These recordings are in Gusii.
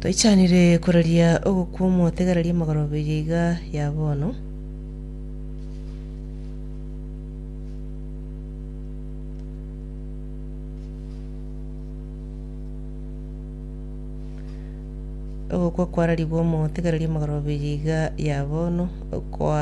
Toichanire koraria ogokwa omotegereria amagoroberia iga ya bono. Ogokwa kwararigwe omotegereria amagoroberia iga ya bono okwa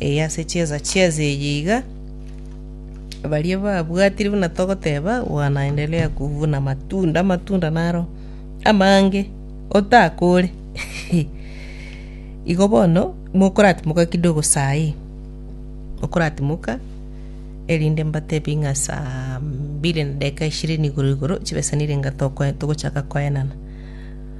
Ee, ase chiesa chiesa eye iga baria babwatire buna togoteba wanaendelea kuvuna matunda amatunda naro amange otakore igo bono mokoratimoka kidogo saii okoratimoka erinde mbatebi ng'a saa mbili na dakika ishirini igoro igoro chibesanire ng'a tokoe- togochaka koenana.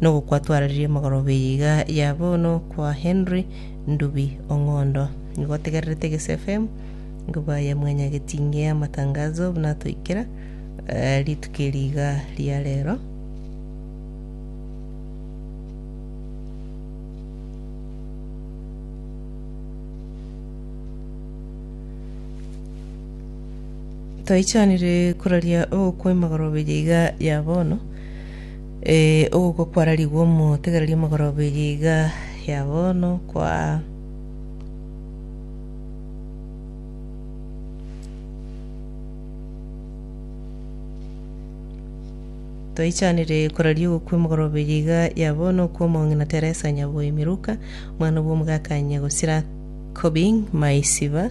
Nogokwa twararirie mogoroba eye iga ya bono kwa Henry Ndubi Ong'ondo. Nigo otegererete Gesi FM, nigo baye mwanyageti inge amatangazo buna atoikera eh, rituko eri iga ria rero. Toichanire koraria ogokwa emogoroba eye iga ya bono Ee, ogokwa kwararigwe omotegereria omogoroba eye iga ya bono, kwa. Twaichanire koraria ogokwa emogoroba eye iga ya bono okwa omong'ina Teresa Nyaboi Miruka, omwana bw'omogaka Nyagosira Kobing Maisiba,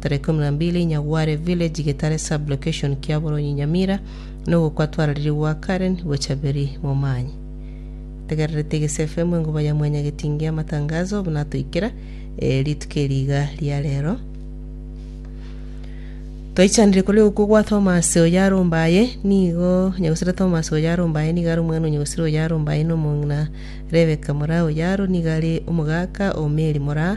Tarehe ikomi na mbili Nyagware Village Getare Sub Location Kiaboronyi Nyamira Nogokwa twararirwe gwa Karen gocha Beri Momanye Tegerera Etegese FM Engoba ya Mwanya Getingi Amatangazo Obo natoikera eh, Rituko eri iga ria rero Twaichanire kore okwo gwa Thomas oyarombaye nigo nyegosira Thomas oyarombaye nigo are omwana onyegosira oyarombaye nomong'ina Rebeka mora oyaro nigo are omogaka o Mary mora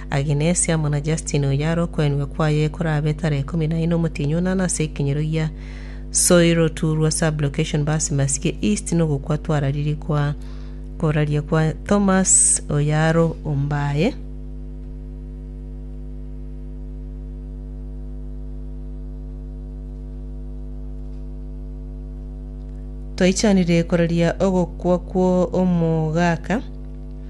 Aginesi amo na Justini oyo are okwenigwa kwaye korabe tara ikomi na ine omotienyi o nana ase ekenyero gia Soiro Turwa Sub-location Basi Masiye East nogokwa twarariri kwa koraria kwa Thomas oyo aro ombaye Twaichanire koraria ogokwa kwo omogaka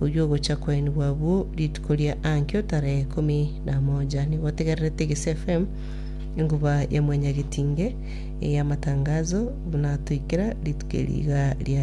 Oyio ogocha kwainigwa abwo rituko ria ankio tarehe ikomi na moja nigo otegererete Gesi FM enguba ya mwenyagetinge eyamatangazo buna atoikera rituko eri iga riarenge.